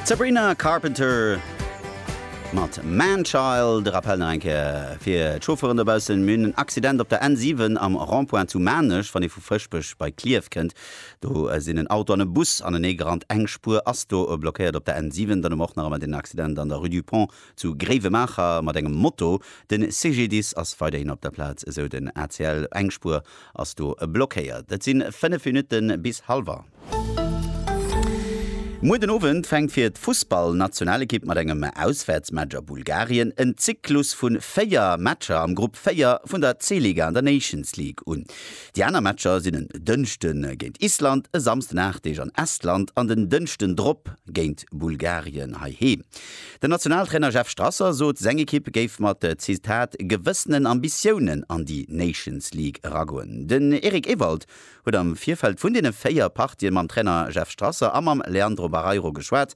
D'Sabrina Carpenter mat Man Child. De Rappell nach eng Kéier fir d'Chauffeuren dobaussen, Mir hunn en Accident op der N7 am Rond-point zu Maarnech, wann ee vu Fëschbech bei Klierf kënnt. Do sinn en Auto an e Bus anenee gerannt. Eng Spuer ass do blockéiert op der N7. Dann hu mer och nach ëmmer den Accident an der Rue du Pont zu Gréiwemaacher mat engem Moto. De CGDIS ass weiderhin op der Plaz, esou den ACL. Eng Spuer ass do blockéiert. Et si 5 Minutte bis halwer. Muer den Owend fänkt fir d'Fussballnationalekipp mat engem Auswäertsmatch a Bulgarien en Zyklus vu 4 Matcher am Grupp 4 vun der C-Liga an der Nations League un. Déi aner Matcher sinn en Dënschde géint Island, e Samsden 8 Deeg an Estland an den Dënschden drop géint Bulgarien heiheem. Den Nationaltrainer Jeff Strasser sot, seng Ekipp géif mat, Zitat, gewëssenen Ambitiounen an déi Nations League eragoen. Den Eric Ewald huet am Virfeld vun deene 4 Partien mam Trainer Jeff Strasser a mam Leandro Barreiro geschwat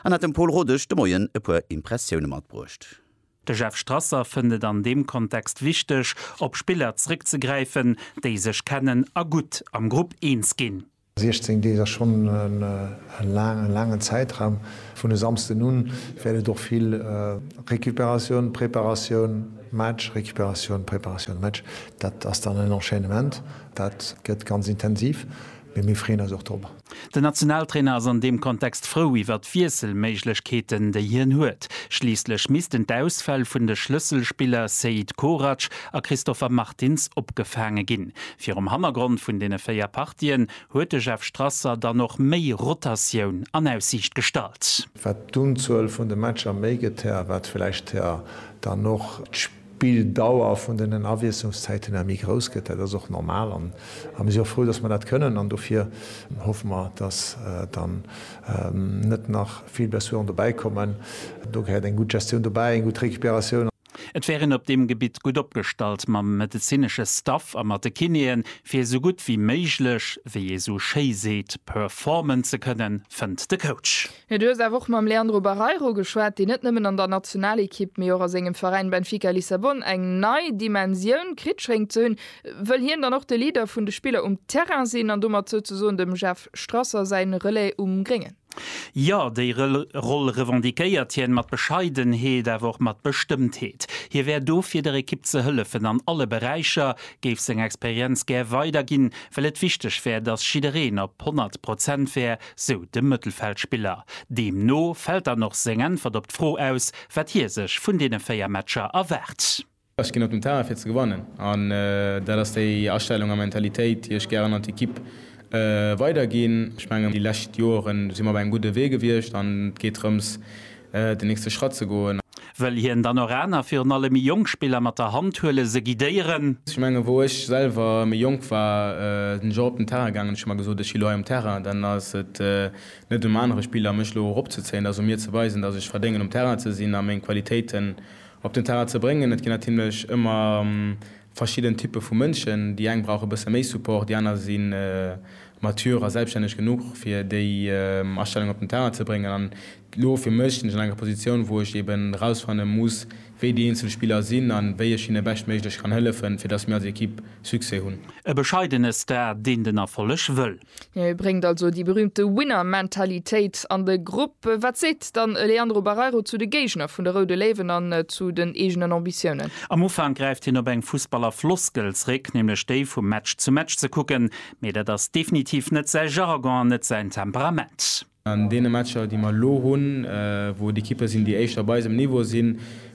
an hat dem Pol Rodesch de Moien e puer Impressioune matbruecht. De Jeff Strasser fënnt et an deem Kontext wichteg, op Spiller zréckzegräifen, déi sech kennen a gutt am Grupp eens ginn. 16 Deeg ass schonn e laangen Zäitraum. Vun e Samsden u wäert et och vill Recuperatioun, Preparatioun, Match, Recuperatioun, Preparatioun, Match. Dat ass dann en Enchaînement. Dat gëtt ganz intensiv, mee mir freeën eis och drop. Den Nationaltrainer ass an deem Kontext frou iwwer d'Wiesselméiglechkeeten, déi hien huet. Schliisslech missten d'Ausfäll vun de Schlësselspiller Seid Korac a Christopher Martins opgefaange ginn. Virum Hannergrond vun deene véier Partien huet de Jeff Strasser dann och méi Rotatioun an Aussiicht gestallt. Wat d'Unzuel vun de Matcher méi gëtt, här, wat vläicht, här, dann och d'Spill. D'Bildauer vun den Awiesslungszäiten ëmmer méi grouss gëtt. Dat ass och normal an mir si och frou, dass mer dat kënnen an dofir hoffe mer, dass dann net nach vill Blessuren dobäi kommen. Do gehéiert eng gutt Gestioun dobäi, eng gutt Recuperatioun. Et wär een op deem Gebitt gutt opgestallt mam medezinesche Staff a mat de Kinéen, fir esou gutt wéi méiglech, wéi ee sou schéi seet, performen ze kënnen, fënnt de Coach. Mee du hues awer och mam Leandro Barreiro geschwat, deen net nëmmen an der Nationalekipp, mee och a sengem Veräin Benfica Lissabon eng nei Dimensioun kritt schéngt ze hunn. Wëll hien dann och de Leader vun de Spiller um Terrain sinn an domat souzesoen dem Jeff Strasser säi Relais um Gréngen? Jo, déi Roll revendiquéiert hien, mat Bescheidenheet, awer och mat Bestëmmtheet. Hie wär do fir der Ekipp ze hëllefen an alle Beräicher, géif seng Experienz gär weiderginn, well et wichteg wär, datt jiddereen op 100 Prozent wär, sou de Mëttelfeldspiller. Deemno fält dann och seng Äntwert op d'Fro aus, wat hie sech vun deene 4 Matcher erwaart. Ech ginn op den Terrain fir ze gewannen an dat ass déi Astellung a Mentalitéit, déi ech gären an d'Ekipp weiderginn. Ech mengen, déi lescht Joren si mer op engem gudde Wee gewiescht an et geet drëms, den nächste Schratt ze goen. Wëll hien dann och aner, virun allem méi jonk Spiller mat der Hand huelen, se guidéieren? Ech mengen, wou ech selwer méi jonk war, sinn ech och op den Terrain gaangen, hunn ech mer gesot, ech si elo hei um Terrain, dann ass et net um anere Spiller mech elo eropzezéien, et ass u mir ze weisen, datt ech verdéngen um Terrain ze sinn a meng Qualitéiten op den Terrain ze bréngen. Et ginn natierlech ëmmer Verschidden Typpe vu Mënschen, déi eng brauche bësse méi Support, déi aner si mature a selbstänneg genuch fir déi Astellung op den Terrain ze bréngen. An elo fir mech sinn ech an enger Positioun, wou ech eben erausfanne muss, wéi déi eenzel Spiller sinn an wéi ech hinne beschtméiglech kann hëllefen, fir datt mir als Ekipp Succès hunn. E bescheidene Star, deen den Erfolleg wëll. Et bréngt also déi berühmte Winner-Mentalitéit an de Grupp. Wat seet dann e Leandro Barreiro zu de Géigner vun de Roude Léiwen an zu den eegenen Ambitiounen? Am Ufank gräift hien op eng Fussballer-Floskel zréck, nämlech déi vu Match zu Match ze kucken. Mee dat ass definitiv net säi Jargon an net säin Temperament. An deene Matcher, déi mer elo hunn, wou et Ekippe sinn, déi éischter op eisem Niveau sinn,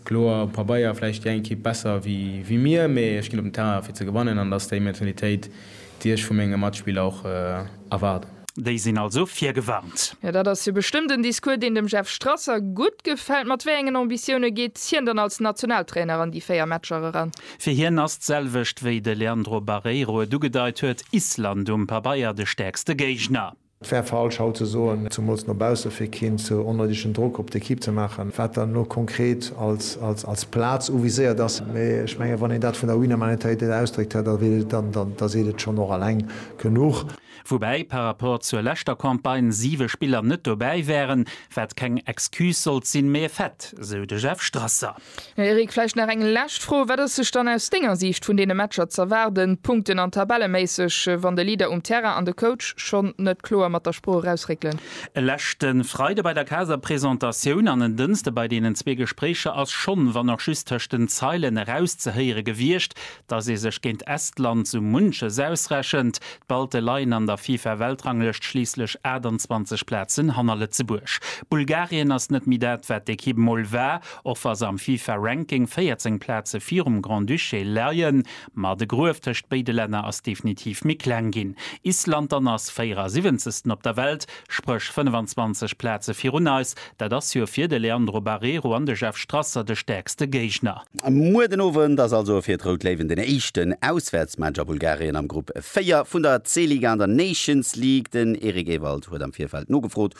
kloer um Pabeier vläicht déi eng Ekipp besser wéi mir, mee ech ginn op den Terrain fir ze gewannen an dat ass déi Mentalitéit, déi ech vu menge Matspiller och erwaarden. Déi sinn also virgewarnt. Jo, dat ass jo bestëmmt en Discours, deen dem Jeff Strasser gutt gefält. Mat wéi engen Ambitioune geet hien dann als Nationaltrainer an déi véier Matcher eran? Fir hien ass d'selwecht, wéi de Leandro Barreiro et ugedeit huet, Island um Pabeier de stäerkste Géigner. Et wär falsch haut ze soen, zumools no bausse, fir keen ze onnoidegen Drock op d'Equipe ze maachen, wat dann elo konkret als Plaz uviséiert ass. Mee ech mengen, wann een dat vun der Humanitaritéit ausdréckt, da seet et schonn och alleng genuch. Woubäi par rapport zur leschter Campagne siwe Spiller net dobäi wären, wat keng Excuse sollt sinn, mee e Fait, sou de Jeff Strasser. Eric, vläicht nach eng lescht Fro, Wat ass sech dann aus denger Siicht vun deene Matcher z'erwaarden, punkten an tabelleméisseg, wann de Leader um Terrain an de Coach schonn net kloer mat der Sprooch erausréckelen? E leschte Freide bei der Caser Presentatioun an en Dënste bei deenen zwee Gespréicher ass schonn, wann och just tëscht den Zeilen, erauszehéiere gewiescht, Dass ee sech géint Estland sou munches ausrechent, d'Balte leien an der FIFA-Weltranglëscht schliisslech 28 Plazen hanner Lëtzebuerg. Bulgarien ass net méi dat, wat d'Ekipp mol war, och wa se am FIFA-Ranking 14 Plaze virum Grand-Duché leien. Ma de Gruef tëscht béide Länner ass definitiv méi kleng ginn. Island dann ass 74. op der Welt, spréch 25 Plaze virun eis, Dat ass jo fir de Leandro Barreiro an de Jeff Strasser de stäerkste Géigner. Muer den Owend ass also fir d'Rout Léiwen den éischten Auswäertsmatch a Bulgarien am Grupp 4 vun der C-Liga an der Nations League. Den Eric Ewald huet am Virfeld nogefrot,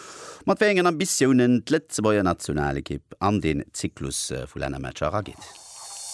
mat wéi engen Ambitiounen d'Lëtzebuerger Nationalekipp an den Zyklus vu Lännermatcher erageet.